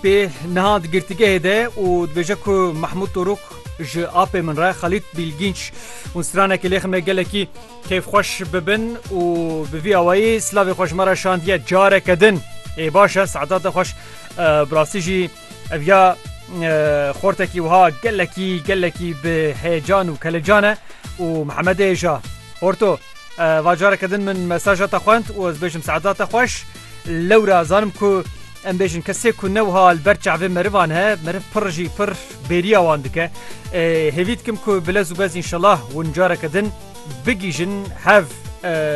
Pê niha di girtîgehê de û dibêje ku Mehmûd Torûk ji apê min re Xelît Bîlgînç hûn stranekê lê xime gelekî kêfxweş bibin û bi vî awayî silavê xwe ji me re şandiye careke din. Ê baş e Sedat te xweş bi rastî jî ev ya xortekî wiha gelekî gelekî bi heyecan û kelecan e û Mihemedê hêja Horto va careke din min mesaja te xwend û ez bêjim Sedat te xweş. Lewra zanim ku em bêjin kesê ku ne wiha li ber çavê merivan he, meriv pir jî pir bêriya wan dike. Hêvî dikim ku bilez û bez înşelah hûn careke din bigîjin hev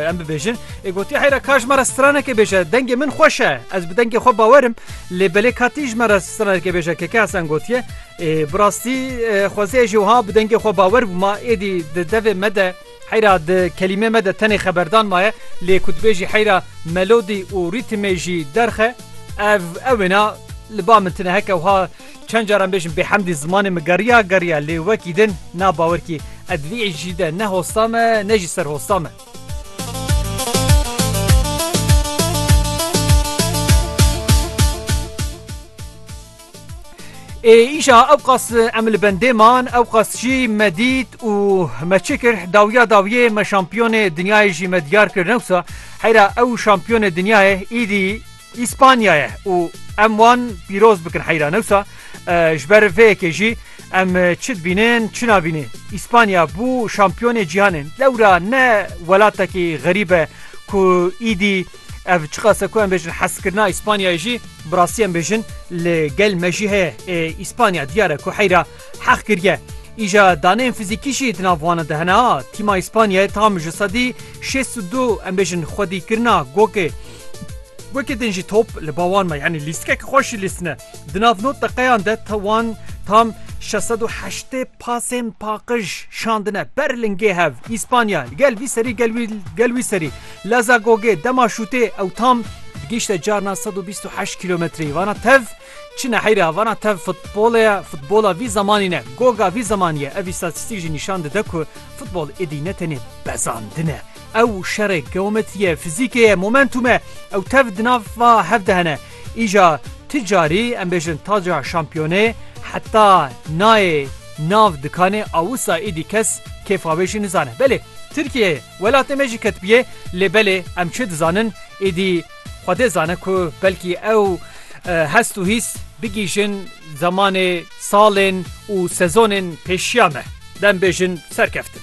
em bibêjin. Ê gotiye heyra ka ji me re stranekê bêje, dengê min xweş e, ez bi dengê xwe bawerim, lê belê ka tî ji me re stranekê bêje Keke Hesen gotiye, Ê bi rastî xwezê ez jî wiha bi dengê xwe bawer bûma, êdî di devê me de, Heyra di kelîmê me de tenê xeberdan maye lê ku dibêjî heyra melodî û rîtmê jî derxe ev ew wêna li ba min tine heke wiha çend caran bêjim bêhemdî zimanê min geriya geriya lê wekî din na bawer kî ed vî êşî de ne hosta me ne jî ser hosta me. Ê îşa ewqas em li bendê man ewqas jî me dît û me çi kir dawiya dawiyê me şampiyonê dinyayê jî me diyar kir newsa heyra ew şampiyonê dinyayê îdî Îspanya ye û em wan pîroz bikin heyra newsa ji ber vê yekê jî em çi dibînin çi nabînin Îspanya bû şampiyonê cîhanê lewra ne welatekî xerîb e ku îdî Ev çiqas e ku em bêjin hezkirina Îspanyayê jî bi rastî em bêjin li gel me jî heye. Ê Îspanya diyar e ku heyra heq kiriye. Îja daneyên fizîkî jî di nav wan de hene. Tîma Îspanyayê tam ji sedî şêst û du em bêjin xwedîkirina gokê. Gokê din jî top li ba wan me yanî lîstikek xweş jî lîstine. Di nav nod deqeyan de wan tam şeş sed û heştê Pasên paqij şandine ber lingê hev, Îspanya li gel vî serî gel wî gel wî serî, leza gogê dema şûtê ew tam digihîşte carna sed û bîst û heşt kîlometreyî. Vana tev çi neheyre ya, vana tev futbolê ye, futbola vî zemanî ne, goga vî zemanî ye. Ev îstatîstîk jî nîşan dide ku futbol êdî ne tenê bezandin e. Ew şerê geometrî ye, fizîkê ye, momentum e. Ew tev di nav va hev de hene. Îja ti carî em bêjin taca şampiyonê heta nayê nav dikanê a wisa îdî kes kêfa wê jî nizane. Belê Tirkiyeyê welatê me jî ketibiyê lê belê em çi dizanin îdî Xwedê zane ku belkî ew hest û hîs bigîjin zemanê salên û sezonên pêşiya me. Dem bêjin serkeftin.